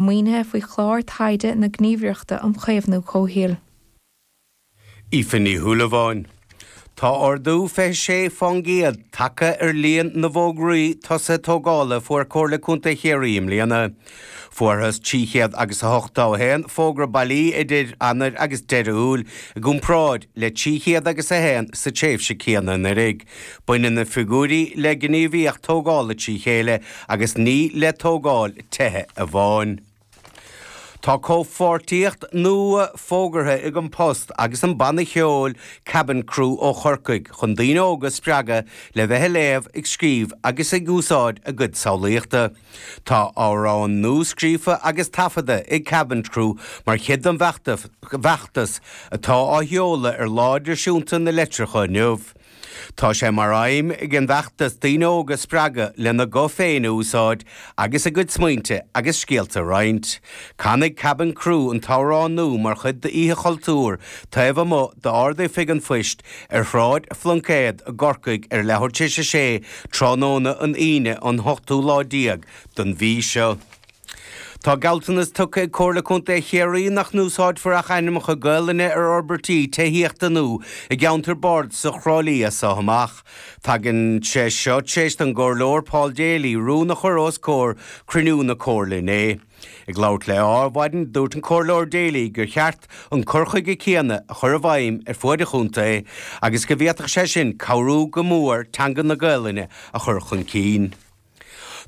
Maoinithe faoi chlár taighde na Gníomhaireachta um Chaomhnú Comhshaoil. Aoife Ní Shúilleabháin. Tá ardú 26% tagtha ar líon na bhfógraí tosaithe tógála a fuair Comhairle Contae Chiarraí i mbliana. Fuarthas trí chéad agus a hochtó a haon fógra bailí idir Eanáir agus deireadh Iúil, i gcomparáid le trí chéad agus a haon sa tréimhse chéanna anuraidh. Baineann na figiúirí le gníomhaíocht tógála trí chéile agus ní le tógáil tithe amháin. Tá comhpháirtíocht nua fógartha ag An Post agus an banna ceoil Kabin Crew ó Chorcaigh chun daoine óga a spreagadh le bheith ag léamh, ag scríobh agus ag úsáid a gcuid samhlaíochta. Tá amhrán nua scríofa agus taifeadta ag Kabin Crew mar chuid den bhfeachtas atá á sheoladh ar Lá Idirnáisiúnta na Litearthachta inniu. Tá sé mar aidhm ag an bhfeachtas daoine óga a spreagadh lena nguth féin a úsáid agus a gcuid smaointe agus scéalta a roinnt. Canfaidh Kabin Crew an t-amhrán nua mar chuid d'Oíche Chultúir taobh amuigh d'Ard-Oifig an Phoist ar Shráid Phluincéad i gCorcaigh ar a leathuair tar éis a 6 tráthnóna an Aoine an 8ú lá déag don mhí seo. Tá gealltanas tugtha ag Comhairle Contae Chiarraí nach n-úsáidfear ach ainmneacha Gaolainne ar fhorbairtí tithíochta nua i gceantar Bardasach Thrá Lí as so amach. Tagann sé seo tar éis don gComhairleoir Paul Daly rún a chur os comhair cruinniú na Comhairle inné. Ag labhairt le Adhmhaidin, dúirt an Comhairleoir Daly gur cheart an cur chuige céanna a chur i bhfeidhm ar fuaid an chontae agus go bhféadfadh sé sin cabhrú go mór teanga na Gaolainne a chur chun cinn.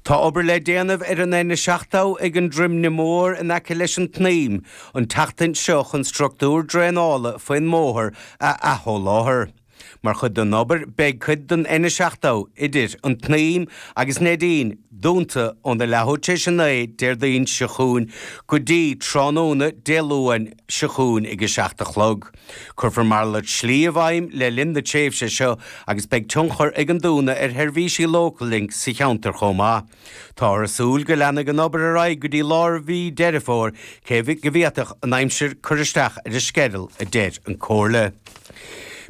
Tá obair le déanamh ar an N70 ag an Droimne Mór in aice leis an tSnaidhm an tseachtain seo chun structúr draenála faoin mbóthar a athsholáthar. Mar chuid den obair beidh cuid den N70 idir an tSnaidhm agus Neidín dúnta óna leathuair tar éis a naoi Déardaoin seo chugainn go dtí tráthnóna Dé Luain seo chugainn ag a seacht a chlog. Cuirfear malairt slí i bhfeidhm le linn na tréimhse seo agus beidh tionchar ag an dúnadh ar sheirbhísí Local Link sa cheantar chomh maith. Táthar ag súil go leanfaidh an obair ar aghaidh go dtí lár mhí Deireadh Fómhair cé go bhféadfadh an aimsir cur isteach ar an sceideal a deir an Comhairle.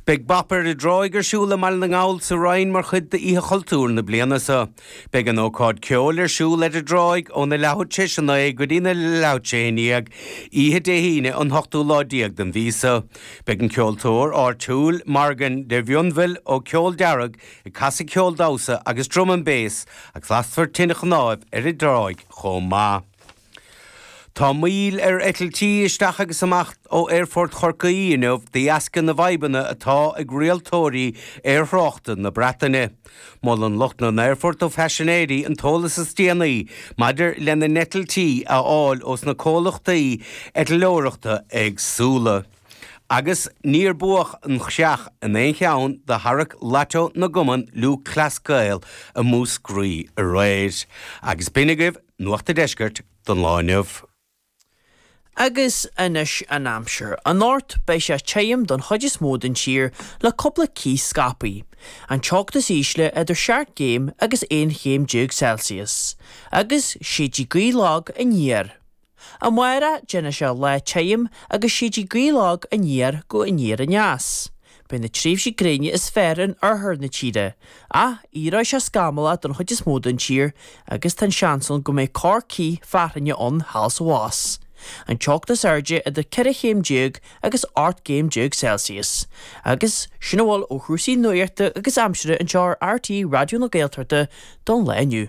Beidh Bop ar an dTráigh ar siúl i mBaile na nGall sa Rinn mar chuid d'Oíche Chultúir na bliana seo. Beidh an ócáid ceoil ar siúl ar an dtráigh óna leathuair tar éis a naoi go dtí a leathuair tar éis a haon déag oíche Dé hAoine an hochtú lá déag den mhí so. Beidh an ceoltóir áitiúil Morgan de Mhionbhiol ó Cheol Dearg ag casadh ceol damhsa agus drum and bass agus lasfar tine chnáimh ar an dtráigh chomh maith. Tá moill ar eitiltí isteach agus amach ó Aerfort Chorcaí inniu de dheasca na bhfadhbanna atá ag rialtóirí aerthráchta na Breataine. Molann lucht na n-aerfort do phaisinéirí an t-eolas is déanaí maidir lena n-eitiltí a fháil ós na comhlachtaí eitleoireachta éagsúla. Agus níor buadh an chreach in aon cheann de tharrac Lotto na gCumann Lúthchleas Gael i Múscraí aréir. Agus b'in agaibh Nuacht an Deiscirt don lá inniu. Agus anois an aimsir. Anocht, beidh sé tirim don chuid is mó den tír le cúpla cith scaipthe. An teocht is ísle idir seacht gcéim agus aon chéim déag Celsius. Agus séidfidh gaoth lag aniar. Amárach, déanfaidh sé lá tirim agus séidfidh gaoth lag aniar go aniar aneas. Beidh na tréimhsí gréine is fearr in oirthear na tíre, ach éireoidh sé scamallach don chuid is mó den tír agus tá an seans ann go mbeidh corr cith fearthainne ann thall is abhus. An teocht is airde idir 14 chéim agus 18 gcéim Celsius. Agus sin a bhfuil ó chúrsaí nuachta agus aimsire anseo ar RTÉ Raidió na Gaeltachta don lá inniu.